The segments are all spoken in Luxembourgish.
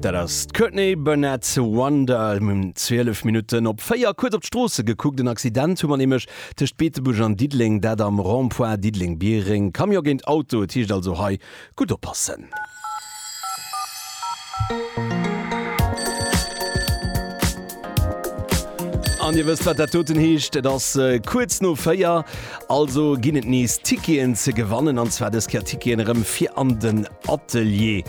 Dat ass d'Courtney Barnett, Wonder. Mir hunn 12 Minutten op 4. Kuerz op d'Stroosse gekuckt, en Accident hu mer nämlech tëscht Beetebuerg an Diddeleng, dat am Rond-point Diddeleng-Biereng. Camion géint Auto, et heescht also hei gutt oppassen. An Dir wësst, wat dat doten heescht. Et ass kuerz no véier, also ginn et nees Ticketen ze gewannen, an zwar dës Kéier Ticketen erëm fir an den Atelier,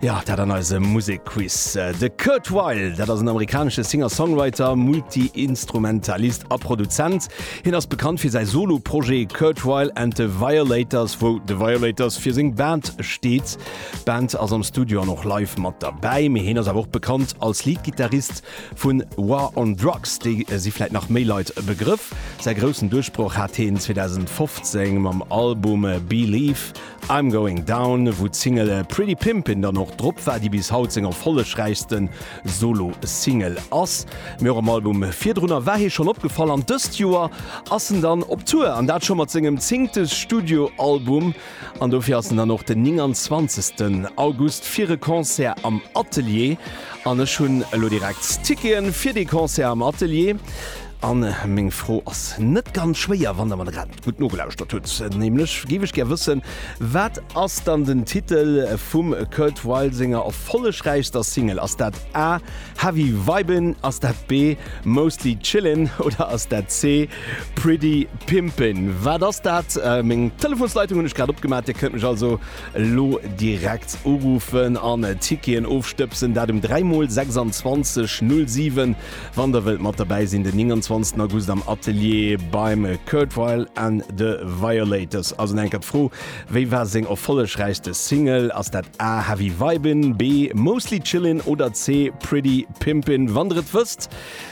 jo, dat an eisem Musekquiz. De Kurt Weill, dat ass en amerikanesche Singer-Songwriter, Multiinstrumentalist a Produzent. Hien ass bekannt fir säi Solo-Projet Kurt Weill and the Violators, wou The Violators fir seng Band steet. D'Band ass am Studio an och live mat derbäi, mee hien ass awer och bekannt als Lead-Gittarist vu War on Drugs, déi si vläit nach méi Leit e Begrëff. Säi groussen Duerchbroch hat hien 2015 mam Album Believe I'm Going Down, wou d'Single Pretty Pimpin' dann och drop war, déi bis haut seng erfollegräichste Solo-Single ass. Mee och am Album virdrunner war hie schonn opgefall an dëst Joer ass en dann op Tour, an dat scho mat sengem zéngte Studio-Album. An dofir ass en dann och den 29 August fir e Concert am Atelier. An ech hunn elo direkt Ticketen fir dee Concert am Atelier. An meng Fro ass net ganz schwéier, wann Der mer grad gutt nogelauschtert hutt. Nämlech géif ech gär wëssen, wat ass dann den Titel vum Kurt Weill senger erfollegräichster Single? Ass dat A, Heavy Vibin', ass dat B, Mostly Chillin' oder ass dat C, Pretty Pimpin, wat ass dat? Meng Telefonsleitung hunn ech grad opgemaach, Dir kënnt mech also elo direkt uruffen an Ticketen ofstëbsen. Dat um 3 mol 26 07, wann der wëllt mat derbäi sinn, den 29 August am Atelier beim Kurt Weill and the Violators. Also nach eng Kéier d'Fro, Wéi war seng erfollegräichste Single? Ass dat A, Heavy Vibin', B, Mostly Chillin' oder C, Pretty Pimpin'? Wann der et wësst,